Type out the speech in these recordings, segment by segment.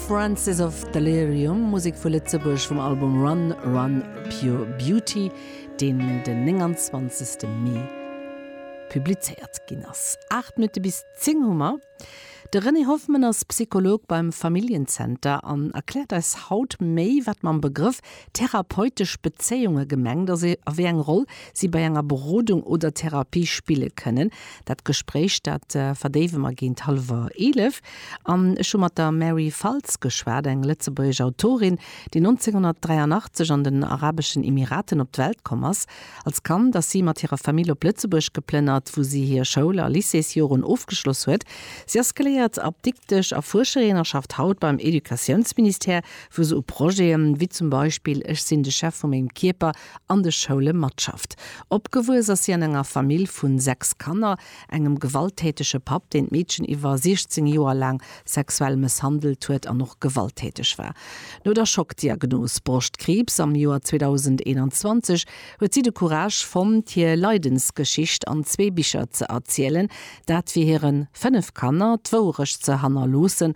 Francis of Delirium, Musek vu Lëtzebuerg vum Album Run Run Pure Beauty, deen den 29 Mee publizéiert ginn ass. 8 Minutte bis 10 hu mer. De René Hoffmann ass Psycholog beim Familljen-Zenter an erkläert eis haut méi, wat mam Begrëff Therapeutesch Bezéiunge gemengt ass e a wéi eng Roll si bei enger Berodung oder Therapie spille kënnen. Dat Gespréich, dat verdéiwe mer géint hallwer 11. An ech hu mat der Mary Faltz geschwat, eng lëtzebuergesch Autorin, déi 1983 an den Arabeschen Emiraten op d'Welt komm ass. Als Kand ass si mat hirer Famill op Lëtzebuerg geplënnert, wou si hir Schoul a Lycéesjoren ofgeschloss huet. Si ass geléiert Apdiktesch a Fuerscherin a schafft haut beim Educatiounsministère, wou se u Projete wéi zum Beispill Ech sinn de Chef vu mengem Kierper an de Schoule matschafft. Opgewuess ass si an enger Famill vu sechs Kanner, engem gewalttätege Papp, deen d'Meedchen iwwer 16 Joer laang sexuell mësshandelt huet an och gewalttäteg war. No der Schockdiagnos Broschtkriibs am Joer 2021 huet si de Courage fonnt, hir Leidensgeschicht an zwee Bicher ze erzielen, dat fir hire fënnef Kanner d'Wouerecht ze hannerloossen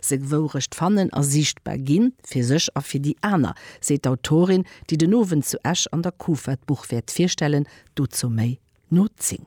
seng Wourecht fannen a siichtbar ginn, fir sech a fir déi aner, seet d'Autorin, déi den Owend zu Esch an der Kufa d'Buch wäert virstellen. Dozou méi no 10.